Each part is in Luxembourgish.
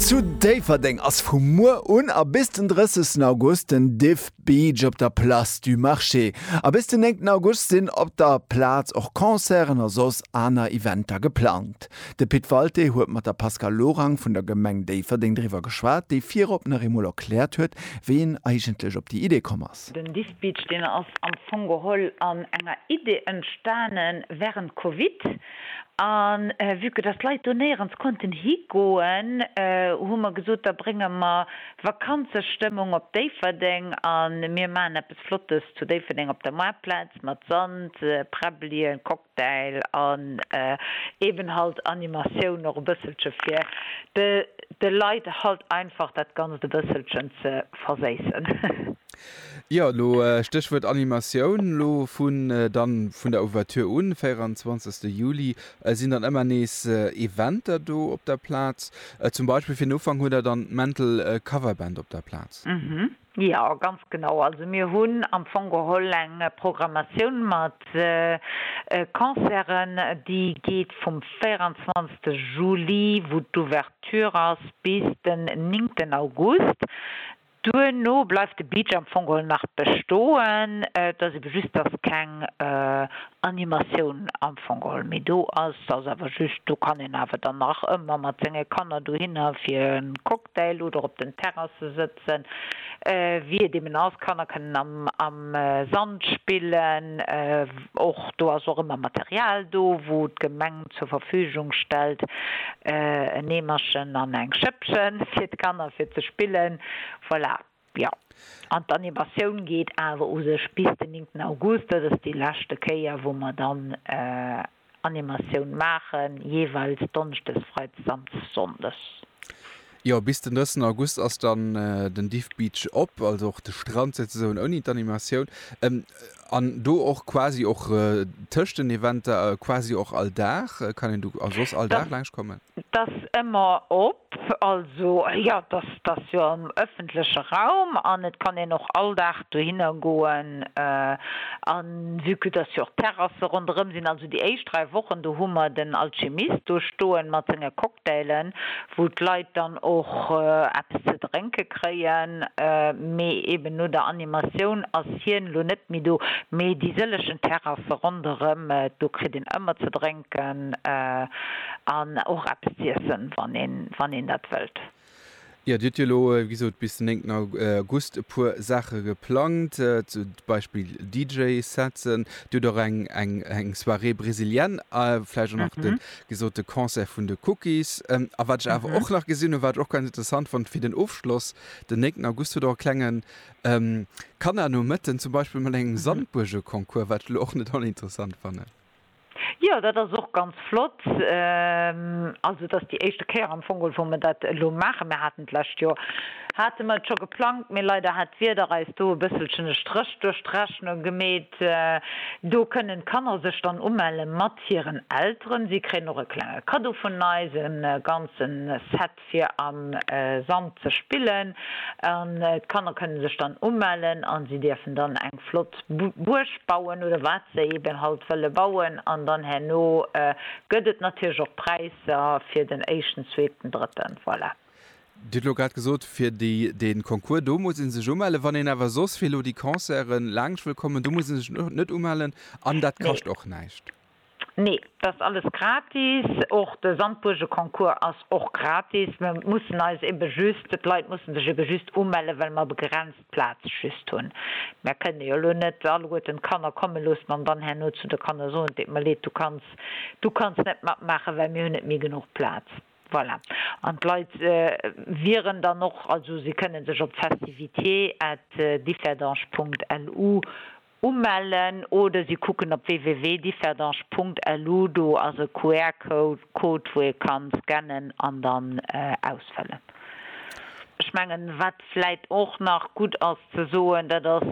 Zu Déifferdeng ass vu muer un a bis den 30 August den Diff Beach op der Place du Marché. A bis den 9 August sinn op der Plaz och Concerten a soss aner Eventer geplangt. De Pit Walté huet mat der Pascale Lorang vun der Gemeng Déifferdeng driwwer geschwat, déi virop nach eemol erkläert huet, wéi een eigentlech op déi Idee komm ass. Den Diff Beach, deen ass am Fong geholl an enger Idee entstanen wärend Covid. An vue que dass d'Leit do néierens konnten higoen, hu mer gesot, da brénge mer Vakanzestëmmung op Déifferdeng an mir maachen eppes Flottes zu Déifferdeng op der Maartplaz mat Sand, Präbbelien, Cocktail an eben halt Animatioun och e bësselche fir de Leit halt einfach dat Ganzt e bësselchen ze verséissen. Jo, lo Stéchwuert Animatioun, lo vun dann vun der Ouverture un, 24 Juli, sinn dann ëmmer nees Eventer do op der Plaz. Zum Beispill fir den Ufank hutt der dann d'Mental Cover Band op der Plaz. Jo, ganz genau. Also mir hunn am Fong geholl eng Programmatioun mat Concerten, déi geet vum 24 Juli, wou d'Ouverture ass, bis den 9 August. Duerno bleift de Beach am Fong geholl nach bestoen, et ass ebe just, dass keng Animatioun am Fong geholl méi do ass. Et ass awer just, do kann een awer dann nach ëmmer mat senge Kanner dohinner fir e Cocktail oder op den Terrasse sëtzen, wéi et eben ass. D'Kanner kënnen am am Sand spillen, och do ass och ëmmer Material do, wou d'Gemeng. zur Verfügung stellt, en Eemerchen an eng Schëppchen fir d'Kanner fir ze spillen. Voilà, jo. An d'Animatioun geet awer u sech bis den 9 August. Dat ass déi leschte Kéier, wou mer dann Animatioun maachen, jeeweils donneschdes, freitags an sonndes. Jo, bis den 3. August ass dann den Diff Beach op, also och de Strand souzesoen ouni d'Animatioun. An do och quasi och tëscht den Eventer quasi och all Dag, kann een do also soss all Dag laanscht kommen? Dat ass ëmmer op, also jo, dat ass jo am ëffentleche Raum an et kann een och all Dag dohinner goen. A vue que dass jo och Terrasse ronderëm sinn, also déi éischt dräi Wochen, do hu mer den Alchemist do stoen mat senge. Cocktail'en, wou d'Leit dann och eppes ze drénke kréien, mee eben no der Animatioun ass hien elo net méi do, mee déi sëllechen Terrasse ronderëm, do kritt een ëmmer ze drénken an och eppes z'iessen, wann een dat wëllt. Jo, Dir hutt jo elo, wéi gesot, bis den 9 August e puer Saache geplangt, zum Beispill DJ-Setzen. Dir hutt och eng eng eng Soirée brésilienne a vläicht och nach de Mhm. gesote Concert vun de Cookies. A wat ech awer Mhm. och nach gesinn hunn, wat ech och ganz interessant fonnt fir den Ofschloss, den 9 August hutt Der och e klengen Kannernomëtten, zum Beispill mat engem Mhm. Sandbuergeconcours, wat ech elo och net oninteressant fannen. Jo, dat ass och ganz flott. Also et ass déi éischte Kéier am Fong, wou mer dat elo maachen. Mir haten d'lescht Joer, hate mer et scho geplangt, mee leider hat d'Wieder eis do e bësselchen e Stréch duerch d'Rechnung gemeet. Do kënnen d'Kanner sech dann umelle mat hiren Elteren. Si kréien och e klenge Kaddo vun eis, e ganze Set fir am Sand ze spillen an d'Kanner kënne sech dann umellen an si dierfen dann eng flott Buerg bauen oder wat se eben halt wëlle bauen an dann herno gëtt et natierlech och Präisser fir den éischten, zweeten, drëtten, voilà. Dir hutt elo grad gesot fir déi den Concours do muss ee sech umellen, wann een awer soss fir elo déi Concerten laangscht wëll kommen, do muss ee sech net umellen an dat kascht och näischt? Nee, et ass alles gratis. Och de Sandbuergeconcours ass och gratis. Mir mussen eis ebe just, d'Leit mussen sech ebe just umellen, well mer begrenzt Plaz just hunn. Mer kënne jo elo net alleguerten d'Kanner komme loossen an dann herno zu de Kanner soen, et deet mer leed, du kanns, du kanns net matmaachen, well mir hunn net méi genuch Plaz. Voilà. An d'Leit wieren dann och, also si kënne sech op festivités at differdange Punkt lu Umellen oder si kucken op www.differdange.lu. Do ass e QR-Code, wou ee ka scannen an dann ausfëllen. Ech mengen, wat vläit och nach gutt ass ze soen, dat ass,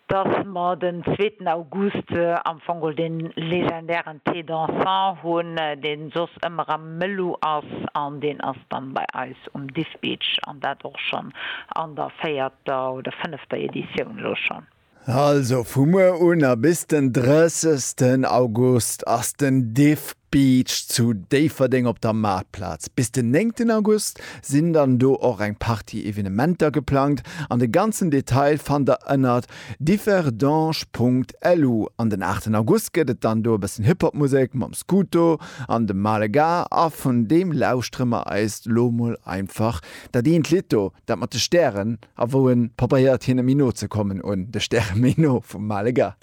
dass mer den zweeten August am Fong geholl dee legendären Thé dansant hunn, dee soss ëmmer am Melu ass an deen a dann bei eis um Dispitch an dat och schonn an der véierter oder fënnefter Editioun elo schonn. Also vu muer un a bis den 30 August ass den Dispitch zu Déifferdeng op der Maartplaz. Bis den 9 August sinn dann do och eng Partie Evenementer geplangt an de ganzen Detail fannt der ënnert Differdange.lu An den 8 August gëtt et dann do e bëssen Hip-Hop-Musek mam Scuto an dem Malega a vun deem lauschtere mer eis lo mol einfach dat eent Lidd do, dat mat de Stären a wou e probéiert hinne méi no ze kommen, un de Stäre méi no, vum Malega.